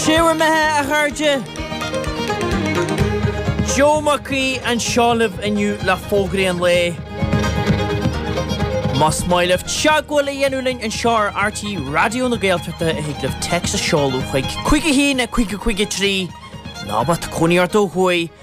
Sé bhur mbeatha, a chairde! Joe Mac Aoidh anseo libh inniu le fógraí an lae. Más maith libh teagmháil a dhéanamh linn anseo ar RTÉ Raidió na Gaeltachta thig libh téacs a seoladh chuig 51553 ná má tá cónaí ort ó thuaidh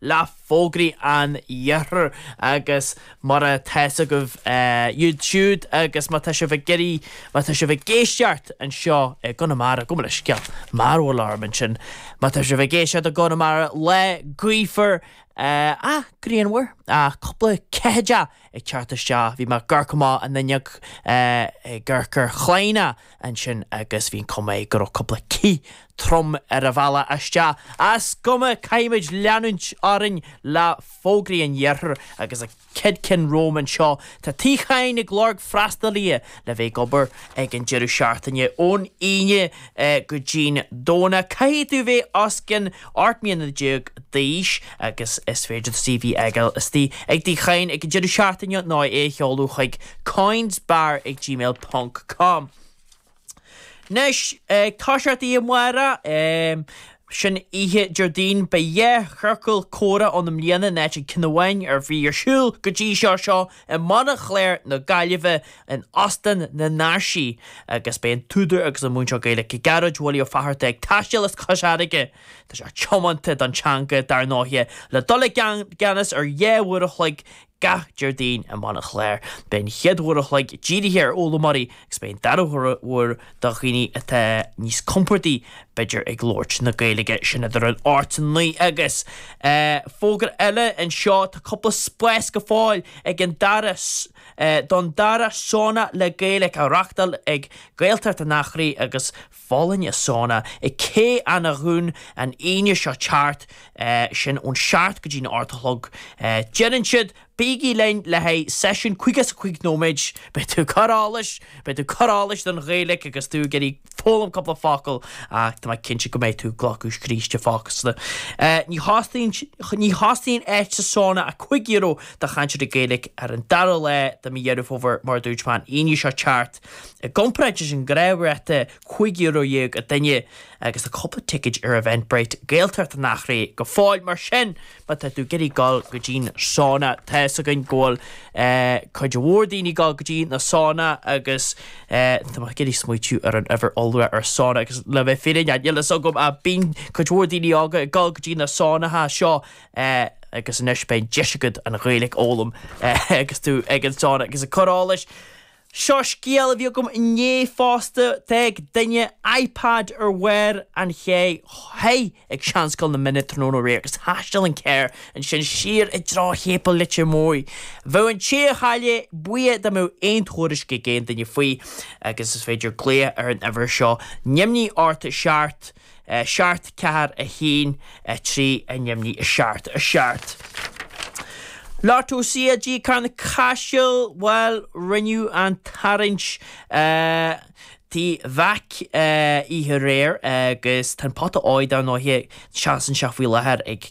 le fógraí an iarthair agus mar a tá's agaibh iad siúd agus má tá sibh ag iarraidh má tá sibh ag éisteacht anseo i gConamara gabh mo leithscéal mearbhall orm ansin má tá sibh ag éisteacht i gConamara lá gaofar ach grianmhar ach cúpla ceathaideacha ag teacht isteach bhí mé ag amharc amach an fhuinneog ag amharc ar Chláiona ansin agus bhí an chuma air go raibh cúpla cith trom ar an bhealach isteach. Is cuma, caithfimid leanúint orainn le fógraí an iarthair agus an chéad cheann romham anseo. Tá Tigh Chadhain ag lorg freastalaithe le bheith ag obair ag an deireadh seachtaine ón Aoine go dtí'n Domhnach. Caithfidh tú bheith os cionn 18 mbliana d'aois. agus is féidir do CV a fhágáil istigh ag Tigh Chadhain ag an deireadh seachtaine nó é a sheoladh chuig coynesbar ag gmail ponc com. Anois, ag toiseacht amárach, sin oíche Déardaoin beidh dhá chiorcal comhrá ann i mbliana in áit an chinn amháin a bhí ar siúl go dtí seo seo i mBaile Chláir na Gaillimhe in Óstán na nÁirsí agus beidh an t-údar agus an múinteoir Gaeilge Gearóid Willie Ó Fátharta ag taisteal as Cois Fharraige Tá sé tiomanta don teanga, dar ndóighe, le dul i gceannas ar dhá uair a chloig gach Déardaoin i mBaile Chláir. Beidh an chéad uair a chloig dírithe ar fhoghlaimeoirí agus beidh an dara huair do dhaoine atá níos compordaí, b'fhéidir, ag labhairt na Gaeilge. Sin idir an ocht is an naoi agus fógra eile anseo, tá cúpla spás go fóill ag an dara don dara sána le Gaeilge a reachtáil ag Gaeltacht an Eachréidh agus. Folláine Sauna i Cé Eanach Dhúin an Aoine seo ag teacht, sin ón seacht go dtí an ocht a chlog. Deireann siad bígí linn le haghaidh seisiún caoga is a cúig nóiméid. Beidh tú cur allais, beidh tú cur allais don Ghaeilic agus tú ag iarraidh foghlaim cúpla focal ach tá mé cinnte go mbeidh tú ag glacadh scríste fosta. Ní, ní chosnaíonn áit sa sauna ach cúig euro do chainteoirí Gaeilic ar an dara lá de mhí Dheireadh Fómhair mar a dúirt mé an Aoine seo ag teacht. I gcomparáid leis an ghnáthráta €15 a duine agus tá cúpla ticéad ar Eventbrite, Gaeltacht an Eachréidh go fóill mar sin má tá tú ag iarraidh dul go dtí'n sána tá's againn go bhfuil cuid mhór daoine ag dul go dtí na sána agus tá mé ag iarraidh smaoitiú ar an uimhir iolra ar sána agus le bheith fírinneach níl fhios agam ach bíonn cuid mhór daoine óga ag dul go dtí na sánaithe seo agus anois beidh deis agat an Ghaeilge a fhoghlaim agus tú ag an sána agus ag cur allais Seo scéal a bhí agam inné fosta, d'fhág duine iPad ar bharr an chairr thoir ag Seanscoil na Minne tráthnóna aréir agus thaisteal an carr ansin siar i dtreo Shéipéal Leitir Móir. Bheadh an té a chaill é buíoch dá mbeadh aon tuairisc ag aon duine faoi agus is féidir glaoch ar an uimhir seo. Neamhní ocht seacht. 7, 4, 1, 3, a neamhní, a seacht, a seacht. Lotto CLG Carna Caiseal bhuel rinneadh an tarraingt Tigh Mheaic oíche aréir agus tá an pota óir dar ndóigh seasann sé faoi láthair ag